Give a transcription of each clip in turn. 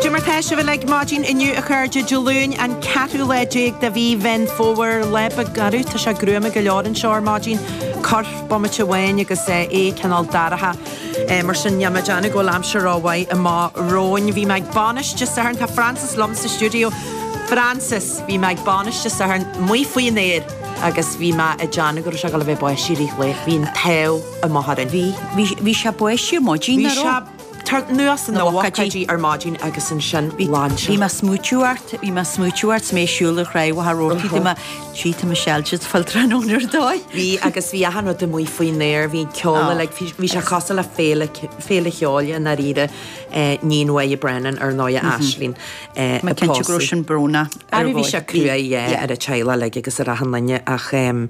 Cad é mar tá sibh ar maidin inniu a chairde Dé Luain an 14ú lá de mhí Mheán Fómhair le ba gairid. Tá sé gruama go leor anseo ar maidin, cur bomaite amháin agus é cineál dorcha. Mar sin níl mé ag déanamh go bhfuil aimsir rómhaith amach romhainn. Bhí mé ag bainis Dé Sathairn, tá Frances liom sa stiúideo. Frances, Bhí mé ag bainis Dé Sathairn, amuigh faoin aer agus bhí mé ag déanamh go raibh sé ag dul a bheith ag báistí i rith an lae. Bhí an t-ádh amuigh orainn. Bhí, bhí, bhí sé ag báistí ar maidin, nach raibh? Tar anuas ina bhuicéidí ar maidin agus ansin ghlan sé. Bhí mé ag smaoitiú ort, bhí mé ag smaoitiú ort is mé ag siúl ar thráigh Mhachaire Rabhartaigh, bhí mé ag ráit tá siad uilig ag fáil tráthnóna ar dóigh! Bhí agus bhí achan rud amuigh faoin aer, bhí ceol le, bhí sé cosúil le féile, féile cheoil i ndáiríre, iníon Moya Brennan ar ndóigh, Aisling Mac Coille. Tá mé cinnte go raibh sin brónach ar Mhoya. Bhí sé cruaidh, yeah, ar a teaghlach agus ar achan duine ach em.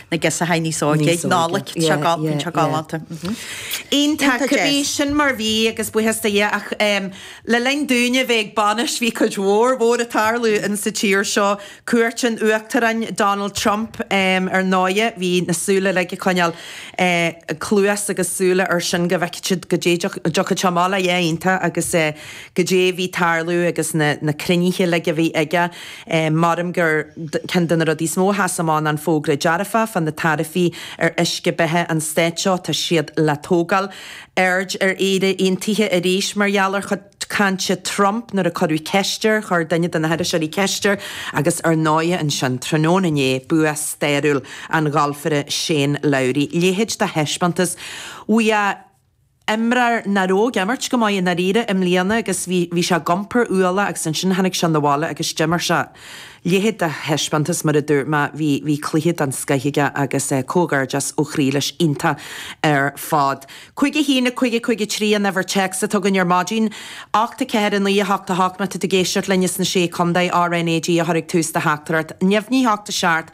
na gasúraí níos óige, ag Nollaig, treo galánta, treo galánta. Iontach, Iontach, bhí Jess. sin mar bhí agus buíochas do Dhia ach em le linn dúinne a bheith ag bainis bhí cuid mhór mhór ag tarlú in sa tír seo, cuairt an Uachtaráin Donald Trump em ar ndóigh bhí na súile uilig ag coinneáil eh cluas agus súile ar sin go bhfeicfeadh siad cad é a dtiocfadh sé amach leis, iontach agus eh cad é a bhí ag tarlú agus na na cruinnithe uilig a bhí aige. Maram gur ceann de na rudaí is mó a sheas amach an fógra dearfach fá na taraifí ar uisce beatha an Stáit seo, tá siad le tógáil. Aird ar Éire Aontaithe arís mar gheall ar chuid cainte Trump nuair a cuireadh ceist air, chuir duine de na hiriseoirí ceist air, agus ar ndóigh ansin tráthnóna inné, bua stairiúil an ghalfaire Shane Lowry. Leithéid de thaispeántas. Bhí a. imreoir nach raibh ag imirt go maith i ndáiríre i mbliana agus bhí bhí sé ag iompar ualaigh agus ansin tháinig sé na bhaile agus d'imir sé leithéid de thaispeántas mar a dúirt mé bhí bhí cluiche den scoith aige agus comhghairdeas ó chroí leis iontach ar fad. 5 1 5 5 3 an uimhir téacs atá againn ar maidin. 8 4 9 8 8 Má tá tú ag éisteacht linn as na Sé Chontae RNAG a chur ag tús do theachtairacht neamhní ocht seacht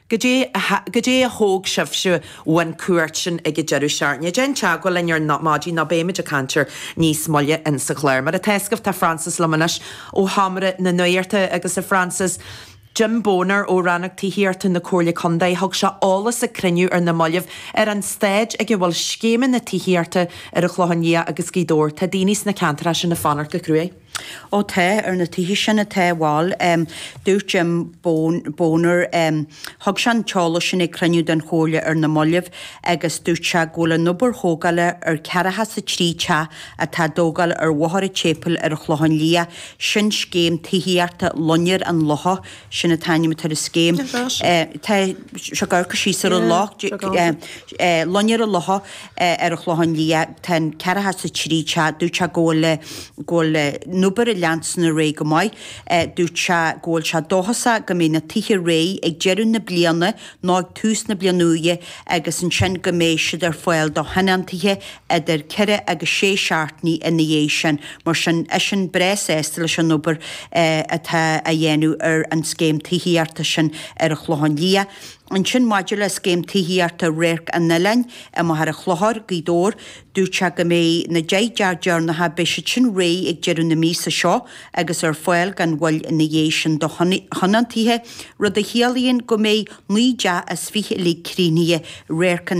Cad é a thóg sibhse ón chuairt sin ag an deireadh seachtaine? Déan teagmháil linn ar maidin nó beimid ag caint air níos moille insa chlár. Mar atá a fhios agaibh tá Frances liom anois ó Sheomra na Nuachta agus a Frances, Jim Boner ó Rannóg Tithíochta na Comhairle Contae thug sé eolas ag cruinniú ar na mallaibh ar an stáid ag a bhfuil scéimeanna tithíochta ar an Chlochán Liath agus Gaoth Dobhair. Tá daoine sna ceantair sin ag fanacht go cruaidh. Ó tá, ar na tithe sin atá, bhuel em, dúirt Jim Boner em, thug sé an t-eolas sin ag cruinniú den Chomhairle ar na mallaibh agus dúirt sé go bhfuil an obair thógála ar ceathracha is a trí teach atá á dtógáil ar Bhóthar a' tSéipeil ar an Chlochán Liath, sin scéim tithíochta Loinnir an Locha, sin an t-ainm atá ar an scéim. Tá, tá. Tá sé ag amharc síos ar an loch, eh, Loinnir an Locha. ar an Chlochán Liath, tá an 4 has 3 cha, dúirt sé go bhfuil, go bhfuil an obair ag leanstan ar aghaidh go maith. Dúirt sé go bhfuil sé dóchasach go mbeidh na tithe réidh ag deireadh na bliana nó ag tús na bliana úire agus ansin go mbeidh siad ar fáil do thionóntaithe idir ceithre agus sé seachtainí ina dhiaidh sin. Mar sin, eisean breá sásta leis an obair atá á dhéanamh ar an scéim tithíochta sin ar an Chlochán Liath. Ansin maidir le Scéim Tithíochta Radharc an Oileáin i Machaire Chlochair, Gaoth Dobhair, dúirt sé go mbeidh na deich dteach deireanacha beidh siad sin réidh ag deireadh na míosa seo agus ar fáil gan mhoill ina dhiaidh sin do thionóntaithe, rud a chiallaíonn go mbeidh naoi dteach is fiche uilig críochnaithe Radharc an